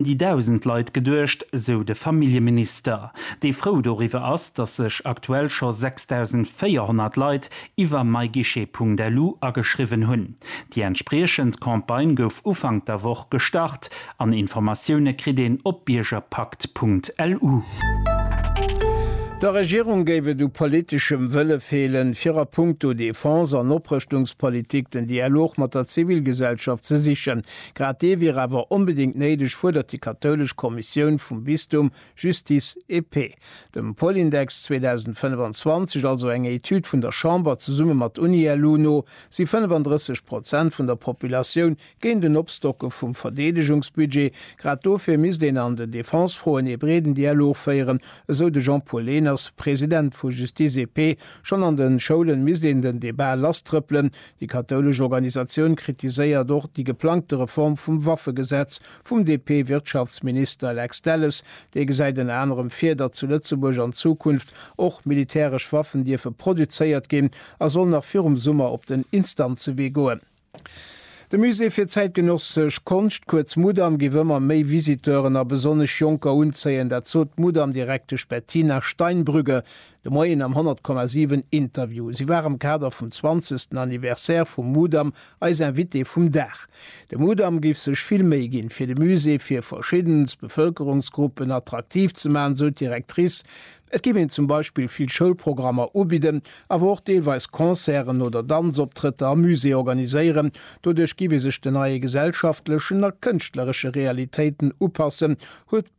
déi dausend Leit geduecht, sou de Familljeminister, dee frou doriwwer ass, datt sech aktuell scho 6.400 Leit iwwer myguichet.lu ageschriwwen hunn. Déi entspriechend Campagne gouf Ufank der Woch gestart an Informatioune kritt een op biergerpakt.lu. Der Regierung géif et u politeschem Wëlle feelen, fir a punkto Defense an Oprëschtungspolitik den Dialog mat der Zivilgesellschaft ze sichen, Grad dee wier awer onbedéngt néideg, fuerdert déi kathoulesch Kommissioun vum Bistum Justice et Paix. Dem Polindex 2025, also enger Etüd vun der Chamber zesumme mat Unielu, no si 35 Prozent vun der Populatioun géint en Opstocke vum Verdeedegungsbudget. Grad dofir misst een an den Defensefroen ee breeden Dialog féieren, esou de Jean-Paul Lehners, President vu Justice et Paix. Schonn an de Schoulen misst een den Debat lasstrëppelen, Déi kathoulesch Organisatioun kritiséiert och déi geplangte Reform vum Waffegesetz vum DP-Wirtschaftsminister Lex Delles. Dee gesäit ënner anerem vir, datt zu Lëtzebuerg an Zukunft och militäresch Waffen dierfe produzéiert ginn a soll nach virum Summer op den Instanzewee goen. De Musée fir zäitgenössesch Konscht, kuerz Mudam, géif ëmmer méi Visiteuren a besonnesch Jonker unzéien. Dat sot d'Mudam-Direktesch Bettina Steinbrügge De Moien am 100,7 Interview. Si war am Kader vum zwanzegsten Anniversaire vum Mudam eis Invitée vum Dag. De Mudam géif sech vill Méi ginn, fir de Musée fir verschiddenst Bevëlkerungsgruppen attraktiv ze maachen, sou d'Directrice. Et géif een zum Beispill vill Schoulprogrammer ubidden, awer och deelweis Concerten oder Danzoptrëtter am Musée organiséieren. Doduerch géif ee sech den neie gesellschaftlechen a kënschtleresche Realitéiten upassen, huet.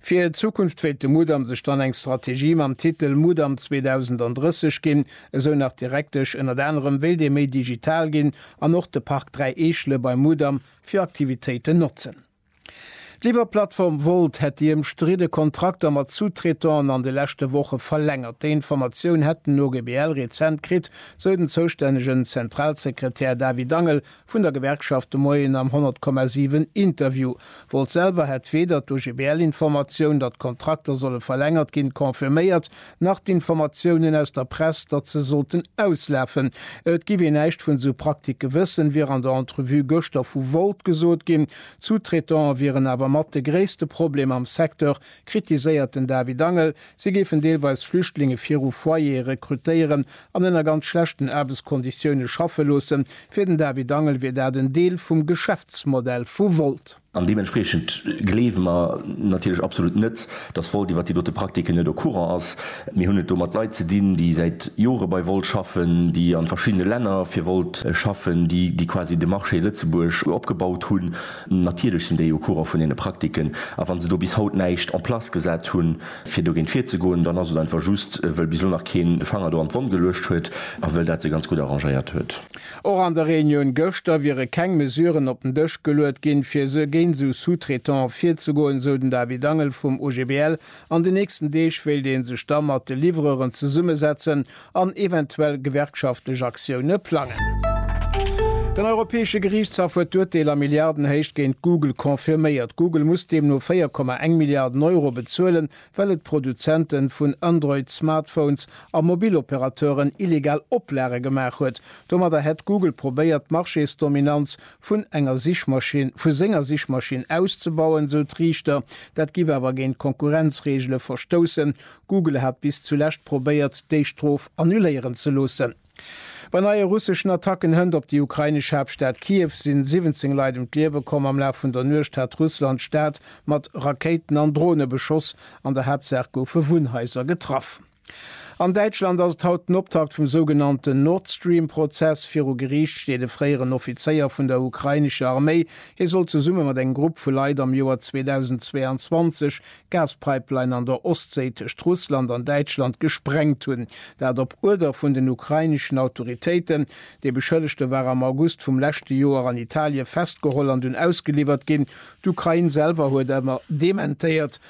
Fir d'Zukunft wéilt de Mudam sech dann eng Strategie mam Titel Mudam 2030 ginn, esou nach d'Direktesch. Ënnert anerem wéilt ee méi digital ginn an och de Park Dräi Eechele beim Mudam fir Aktivitéiten notzen. D'Liwwerplattform Wolt hätt déi ëmstridde Kontrakter mat Sous-Traitanten an de leschte Woche verlängert. Déi Informatioun hätt den OGBL rezent kritt, sou den zoustännegen Zentralsekretär David Angel vun der Gewerkschaft de Moien am 100,7 Interview. Wolt selwer hätt weder d'OGBL-Informatioun, datt d'Kontrakter solle verlängert ginn, confirméiert, nach d'Informatiounen aus der Press, datt se sollten auslafen. Et giff een näischt vun esou Praktike wëssen, wier an der Entrevue gëschter vu Wolt gesot ginn. D'Sous-Traitante wieren awer mat de gréisste Problem am Secteur, kritiséiert den David Angel. Si géifen deelweis Flüchtlinge viru Foyere rekrutéieren an ënner ganz schlechten Aarbechtskonditioune schaffe loossen. Fir den David Angel wier dat en Deel vum Geschäftsmodell vu Wolt. An deementspriechend gleewe mer natierlech absolut net, datt Wolt iwwer déi dote Praktiken net au courant ass. Mir hunn et do mat Leit ze dinn, déi säit Jore bei Wolt schaffen, déi a verschiddene Länner fir Wolt schaffen, déi quasi de Marché Lëtzebuerg opgebaut hunn. Natierlech sinn déi au courant vun deene Praktiken, a wa se do bis haut näischt en place gesat hunn, fir dogéint virzegoen, dann ass et einfach just, wëll bis elo nach keen de Fanger do an d'Wonn geluecht huet a wëll dat se ganz gutt arrangéiert huet. Och an der Reunioun gëschter wiere keng Mesuren op den Dësch geluet ginn, fir géint esou Sous-traitante virzegoen, esou den David Angel vum OGBL An den nächsten Deeg wéilt ee sech da mat de Livreuren zesummesetzen an eventuell gewerkschaftlech Aktioune plangen. Den Europäesche Geriichtshaff huet d'Urteel a Milliardenhéicht géint Google confirméiert. Google muss deemno 4,1 Milliarden Euro bezuelen, well et Produzente vun Android-Smartphones a Mobiloperateuren illegal Oplage gemaach huet. Domadder hätt Google probéiert, d'Marchésdominanz vun enger Sichmaschinn, vu senger Sichmaschinn auszebauen, sou d'Riichter. Dat giff awer géint d'Konkurrenzreegele verstoussen. Google hat bis zulescht probéiert, déi Strof annuléieren ze loossen. Bei neie russeschen Attacken hënt op déi ukrainesch Haaptstad Kiew si 17 Leit ëm d'Liewe komm. Am Laf vun der Nuecht hat Russland d'Stad mat Rakéiten an Drone beschoss. An der Haaptsaach goufe Wunnhaiser getraff. An Däitschland ass et haut den Optakt vum sougenannten Nordstream-Prozess. Viru Geriicht steet e fréieren Offizéier vun der ukrainescher Arméi. Hie soll zesumme mat engem Grupp vu Leit am Joer 2022 d'Gaspipeline an der Ostséi tëscht Russland an Däitschland gesprengt hunn. Dat op Uerder vun den ukraineschen Autoritéiten. De Beschëllegte war am August vum leschte Joer an Italie festgeholl an dunn ausgeliwwert ginn. D'Ukrain selwer huet awer dementéiert,